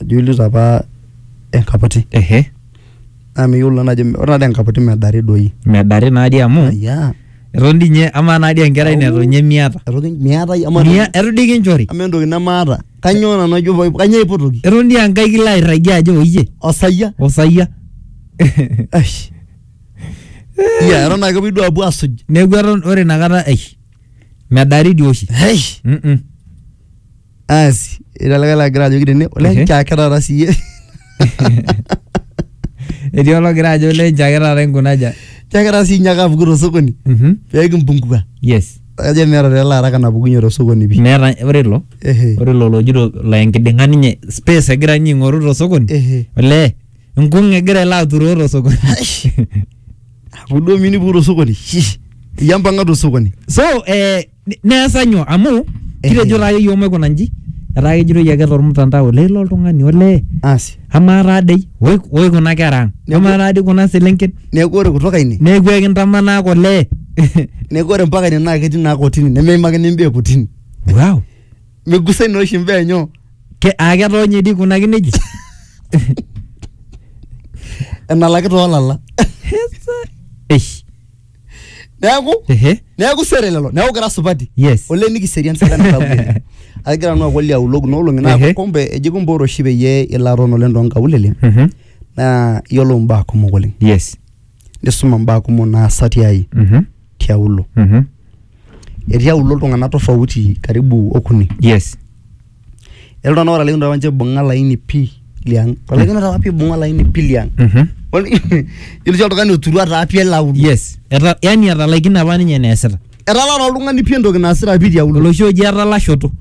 adolita apa enkaputi ehe naa miyiolo naa ajo ore taata enkaputi medari doi medari naadii amu ya eton dii ninye amaa naadii enkerai neton ninye miata etoki miatai ama Mia- eton dii kinchori ama entoki nemaata kanyoo nanu ajo paip- kanyoo aipotoki eton dii enkai kilo airragie ajo oyie osayia osayia Eish. ya eton ake pidu apuo asuj neeku eton ore inakata eish medari dii oshi Eish. Mm-mm. asi etii olikae lagira ajoki tene Ehe. ole nchake taata siye etii ologira ajo lenchake taata inkunaja nchake taata sii nyaaka apuku tosokoni Mhm. pekimpungua yes kajo meeta tele araka napukunye tosokoni pi meeta ore ilo ehe ore ilo lojito la enkiding'a ninye space egira ninye aing'oru tosokoni ehe olee nkung egira ilo aturoo tosokoni apuku duo minipuku tosokoni shish iyie mpang'a tosokoni so eh, Ni- neesa nyoo amu kitejo taake iyiook maikuna nji etaa kejitoi ake tormutandao olee ilo oltung'ani olee asi amaa taa dei oi oi kuna kera ang Neku- amaa taa dei kuna selenken neeku ore kutoka ine neeku ekintamanaa olee neeku ore mpaka ine naa ketii naa kotini nemeimakini imbaa e kotini wow migusai naa oshi imbaa enyo ke aa ketoonye dii kuna kineji enalaki toolala Hesa. eish neeku Ehe. neeku sere lelo neeku kira supati Yes. ole nikiserian sirkali sapuk oleng. agira nanu akuali aulok noolong'i Ehe. naa kumbe eji kumbe ore oshi peyie ilo aton oleng toonkaulele Mhm. naa iyiolo imbaa kumok oleng Yes. nisuma imbaa kumok naasa tiai Mhm. tiaulo Mhm. etii aulo iltung'anak tofauti karibu okuni Yes. iltung'anak ootalaikinote apa ninche aibung'a olaini pii liang olaikinote apa piibung'a olaini pii liang Mhm. Ol- yiolo sii oltung'ani oturua taa pii ele auluo yes Eta- yani etalaikine apa ninye eneesita etalaa taa oltung'ani pii entoki naasita pii tiauluo oloshi oji etalashoto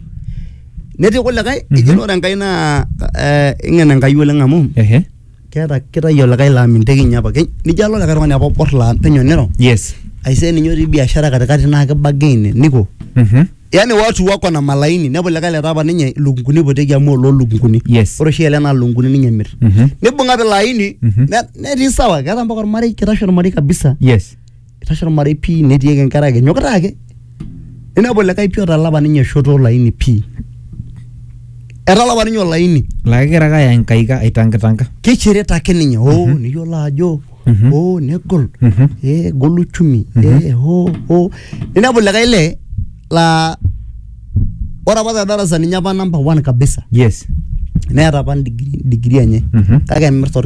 netii kulikae Mhm. eji ore enkai naa eh, ing'en enkai oleng amu ehe keeta kitayu olikae laa minteki ninye apa Ke- nijo alo likae tung'ani apa obor laa penyo niro yes aisee ninye otii biashara katikati naa kibagee ine niko Mhm. yani watu wako na malaini nepu likae letaa apa ninye ilukunguni ipoteki amu oloo lukunguni Yes. ore oshi ele naa lukunguni ninye emir Mhm. nibung'a pilaini Mhm. ne- netii sawa keeta mpaka ormarei kitashe ormarei kabisa yes itashe ormarei pii netii ake inkera ake enyokita ake ninepu likae pii otalapa ninye shoto olaini pii etalapa ninye olaini laa kegira ake aya inkaika aitankitanga kishirita ake ninye oo niyiolo ajo Mhm. oo negol Mhm. ee egol uchumi ee oo oo ninepu likae lee laa ore apa te darasa ninye apa number one kabisa yes neeta apa degree degree enye Mhm. kake emirta orkiti